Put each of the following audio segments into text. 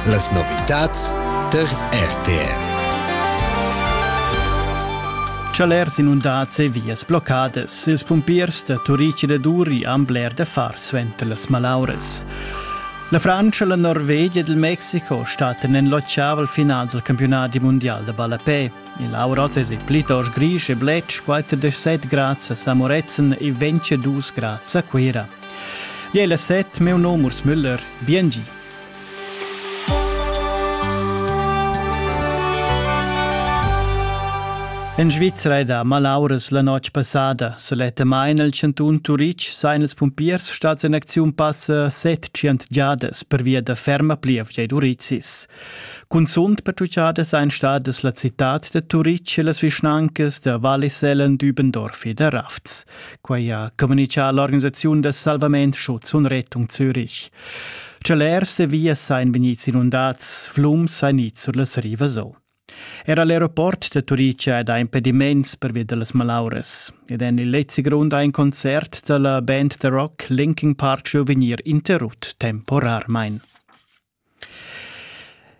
Las novitads tar RTR. Chalers inundads e vias bloccadas. Ils pumpiers da Turic e da Duri han bler da far suenter las malauras. La Frantscha, la Norvegia ed il Mexico stattan en lotschava al final del campionati mondial da ballapè. Il Auroz es il plitost grisch e bletsch, 47 grads a Samorezen e 22 grads a Cuira. Jeu la set meu nom Urs Müller, biengi. En Svizzera da malauras la notg passada sulettamain el chantun Turitg sain els pumpiers stads en acziun passa set cient giadas per via da ferma plievgia ed urizis. Cunzunt per tucciadas ein stadas la citad da Turitg e las vischnancas da Val Sellen, Dübendorf e da Rafts. Quai ha communitgà l'organisaziun da salvament Schuzun Rettung Zürich. Celers e vias sain vegnids inundats, flums sain its sur las rivas o. Era l'aeroport da Turicia è da impediments pervia da las malauras. Ed en il lezzi grund ha in concert da la band The Rock Linkin Park Show vegnir interrut temporarmain.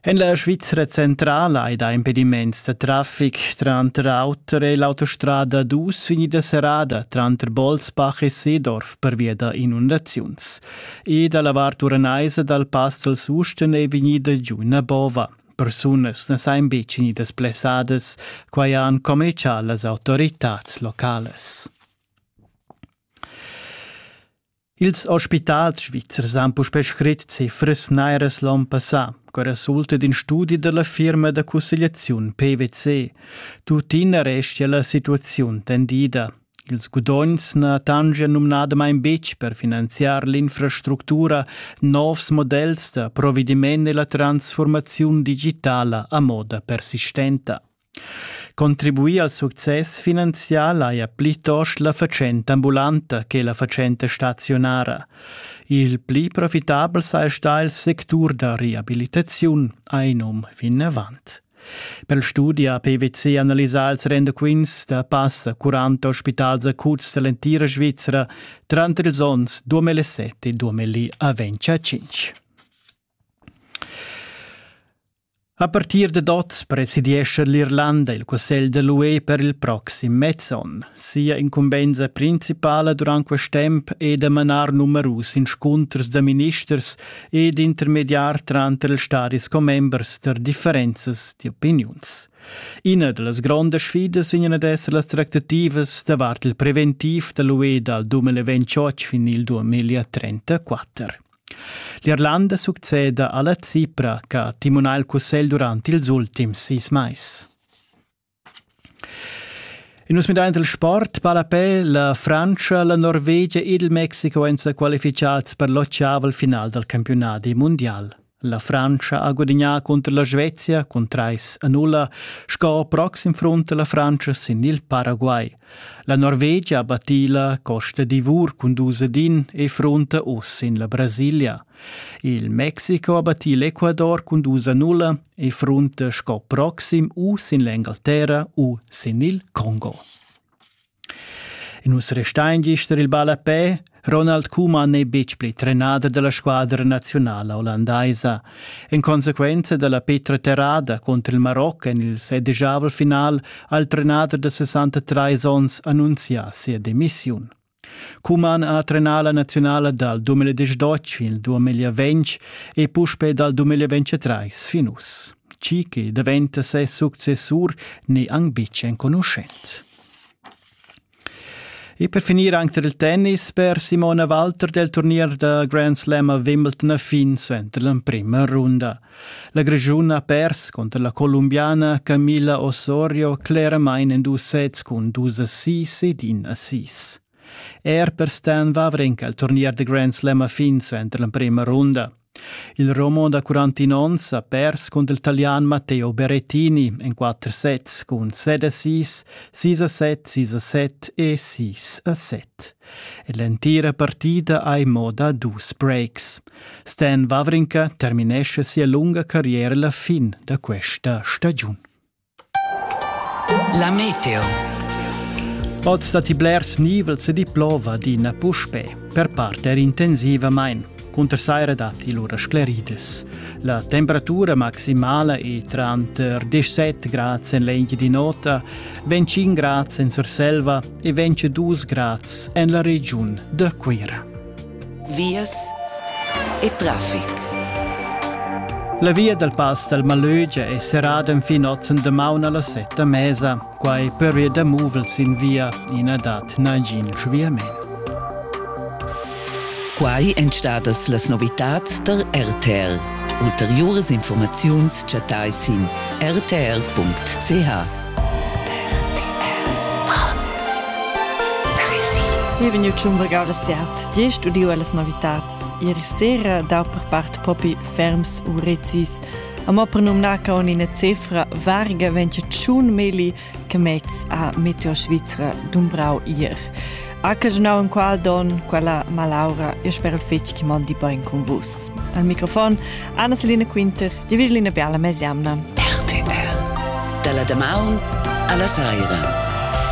En la Svizra centrala ei da impediments da traffic tranter auter è l'autostrada dus vegnida serrada tranter Bolzbach e Seedorf pervia da inundaziuns. E dalla vart uranaisa dal Pass al Susten è vegnida giu una bova. Persunas na sain betg vegnidas blessadas, quai han commercial las autoritads locales. Ils ospitals svizzers han puspè scrit cifras nairas l'on passà, che resulta d'in studi della firma da cussegliaziun PwC. Tuttina restia la situaziun tendida. Ils gudogns na tangian numnadamain betg per finanziar l'infrastructura novs models da provediment e la transformaziun digitala a moda persistenta. Contribuir al success finanzial haja plitost la fatschenta ambulanta che la fatschenta staziunara. Il pli profitabel saja stà il sectur da reabilitaziun, ha num vinavant. Per studia PwC analisà ils rendaquints da passa 40 ospitals acuts dall'entira Svizzera tranter ils onns 2007 e 2005. A partir dad oz presidiescha l'Irlanda il cussegl da l'UE per il proxim mez onn. Sia incumbensa principala durant quest temp è da manar numerus inscunters da ministers e d'intermediar tranter ils stadis commembers da differenzas d'opiniuns. Ina da las grondas sfidas in ad esser las tractativas davart il preventiv da l'UE dal 2028 fin il 2034. L'Irlanda succeda alla Cipra che ha timunà il cussegl durant ils ultims sis mais. In nus midaint il sport pa la pe la Frantscha, la Norvegia ed il Mexico èn sa qualifichats per l'ottavel final dal campionadi mundial. La Frantscha ha gudignà cunter la Svezia cun trais a nulla, sco proxim front la Frantscha sin il Paraguay. La Norvegia battì la Costa d'Ivor cun dus ed in e fronta uss in la Brasilia. Il Mexico ha battì l'Ecuador cun dus a nulla e fronta sco proxim u sin l'Engalterra u sin il Congo. In nus restain gist il ballapè Ronald Koeman n'è betg pli trenader da la squadra naziunala ollandaisa. En consequenza da la petra terrada contro il Maroc en il sedijavel final ha il trenader da 63 onns annunzià sia demissiun. Kuman ha trenà la nazionala dal 2018 il 2020 e puspe dal 2023 fin uss. Chi che daventa ses successur n'è anc betg enconuschent. E per finir anche il tennis per Simona Walter del turnier da Grand Slam a Wimbledon fin suenter l'emprima runda. La Grischun ha pers contro la colombiana Camilla Osorio claramain en dus sets cun dus assist ed in assist. Er per Stan Wawrinka il turnier da Grand Slam a fin suenter l'emprima runda. Il roman da quarantin onns ha pers cun il talian Matteo Berrettini en quatter sets cun set a sis, sis a set, sis a set e sis a set. E l'entira partida ha in mo da dus breaks. Stan Wawrinka terminesce sia lunga carriera la fin da questa stagiun. La meteo. Oz datti blers nivels e di plova adina puspè, per part er intensivamain. Cunter saira datti lura scleridas. La temperatura maximala è tranter 17 grads en l'egl di nota, 25 grads en Surselva e 22 grads en la regiun da Cuira. vias e traffic. La via dal pass dal Malögia è serrada enfin oz en damaun a las set da mesa, quai per ir da muvel sin via e na dat nagin sviament. Quai èn stadas las novitads da RTL. Ulteriuras informaziuns chattai sin rtr.ch. Wie vegniu tschun vargau la siat, gest udiu allas novitads. Ieri sera dau per part propi ferms u rezis. Amo per numnar con ina cefra varga ventscha tschun meli che mez a Meteo Svizra dumbrau ier. Ha caginau enqual don quella malaura e spero fetg che mondi bein cun vus. Al microfon Anna Selina Quinter, di Vigilina Biala Mesiamna. RTR. Dalla damaun alla saira.